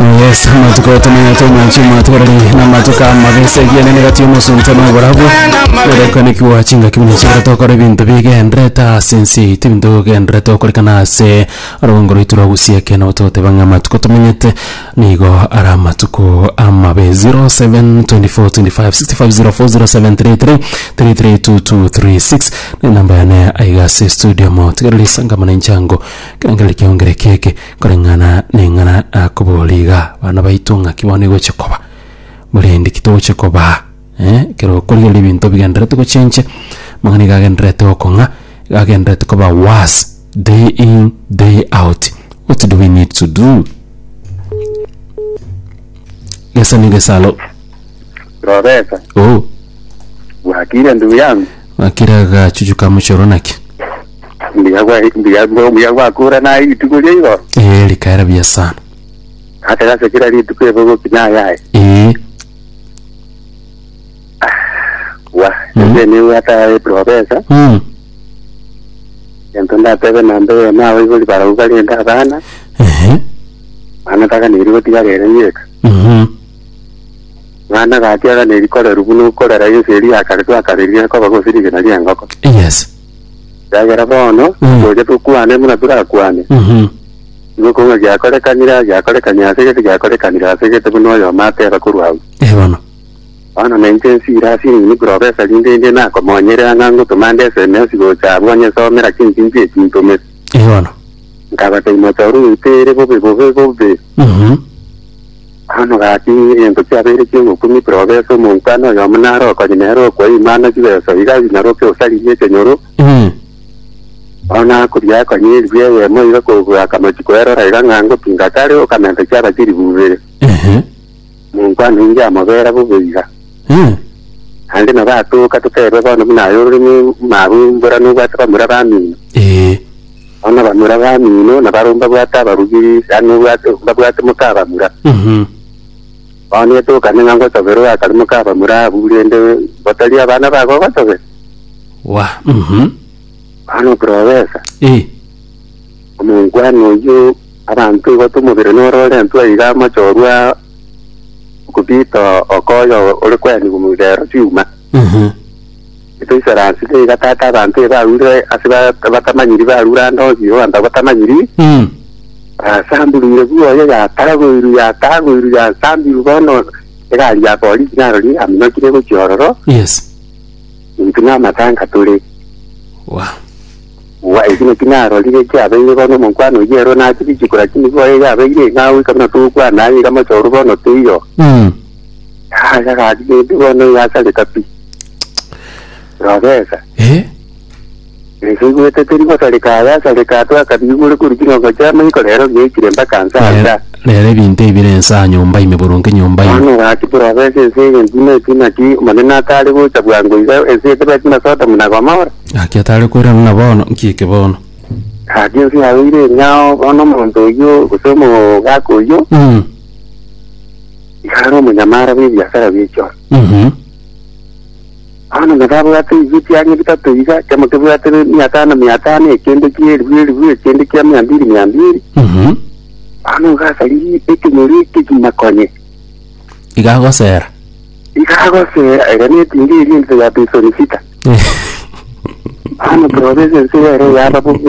Yes, amatuko tumanya tomanchi amatuko rari na amatuko amabe ase ekiagera negati omosunte na oborabu erekane kiwa chingaki buna chibere tokora ebinto bigenderete ase ense yaito ebinto bigenderete okorekana ase orobongo rwaito rwa gosieke nabo togoteba ng'a amatuko tomenyete nigo are amatuko amabe 07242565040733 332236 na enamba yane aiga ase estudio motigereri sangamana inchango ekerengerero kiaongere keke Koreng'ana neng'ana nakoboria igaa, bana baito ng'aki bono egochia koba, borendi ki togochia kobaa, eh, ekero okoria oria ebinto bigendererete gochenche, amang'ana iga agendererete gokong'a, iga agendererete koba worse day in day out, what do we need to do? Gesani gesalo, Roresa, oh, bwakire ndugu yangu. ng'akire agachuchu ka mochie oro naki? Mbuya gwa mbuya gwa mbuya gwakura na ibituko ria igoro. ee rikaera buya sana Ate gase kira rituko ebe gokina ayaye. ee Wa. Mm. Ebe ni wata profesa. mm. Ento ndatebe na mbebe na awe gori barau bari enda abana. ehe Ana taka ni rigo tiga rere yeka. mhm Mwana gati aga ni rikore rubu no korera yese ri akare twa kare ri akoba gosiri gina ri angoko. yes Ekiagera bono Mm. tocha tokwane buna torakwane, Mhm. nigo okobua ng'a giakorekanire aa, giakorekani ase gete, giakorekanire ase gete, buna oyomo ateba korwa agwo. Eh, bono. Bono na inche nsire ase enini buna obesa rinde inde nakomonyerera ng'a ngotoma nde esemesi gocha abwo onye somera chinki nki eki ntomete. Eh, bono. Nkabata imocha orwe oite ere bobe, bobe, bobe. Mhm. Amabati, egento chiabo ere chi'ogokumia ekerogo ase omonto ane oyomo naro okonye nere okwa Imana chibeso iga aginyaroke gose arigie ekenyoro. Mm. Bono nakoria akonye eribu eyemo iga kobua akamochi koerora iga ng'a ngotinga kare okamenta chiaba chiribu ibere. Ehe. Omonto ane inche amobera bobe iga. Mm. Naende nabo atoka toterwe bono buna aye ororemi mabu mbora nobwate bamura bamino. Ee. Bono abamura bamino nabare mbabwate abarugiri, yaani obwate mbabwate moka abamura. Mhm. Bono netokane ng'a ngotoberwe akare moka abamura abwo, rende botari abana bago ogotobera. Wa. Mhm. Bono profesa, Eh. omonkwana oyio abanto igo tomobere nore orentwe aiga amoche orwa okobita okoyo ore kweanigwa omobere ero chiuma. Mhm. Etoisera ase taiga tata abanto eba arure ase ba- batamanyiri barure ande onsi Yehova nta batamanyiri Mm. basamburuire bwoye yatagoirwe yatagoirwe yasambirwe bono egari ya polisi narori aminokire gochia ororo Yes. intwe na amatanga tore Wow. wa eki naki narorire kiabeire bono omonkwano oyio ero nachi bichiko lakini bwoye yabeire ng'a goika buna togokwana aye iga mochoro bono teiyo Mm. yaya gari gende bono yasareka pi Rogesa, Eh, ense igwete teri gosareka aya asareka atwe akabigure kori chingongo chia amaiko rero giaikire mpaka nsa rero- anda. rero ebinto ebi bire ense aa nyomba ime boronge nyomba ime. Bono gaki porofesa ense eye ntino eki naki Omonene atare gocha bwango iga ense etebeti na Sodomu na Gomora. Gaki atare koirana na bono, nki eke bono? Gaki ense yao ire enyao bono omonto oyio gose omogaka oyio Mm. iga are omonyamara bw'ebiasara bi'echioro. Bono nababwate ebibe ebiange bitato iga, kemo kebwate mia tano mia tano, ekende kia elifu elifu, ekende kia mia mbiri mia mbiri. Bono ngasaririe ekenyoro ekegima konye. Iga agosera. Iga agosera, eria netinga eria ense ya Pisoni Sita. Bono torobesa ense ere yaba bobe.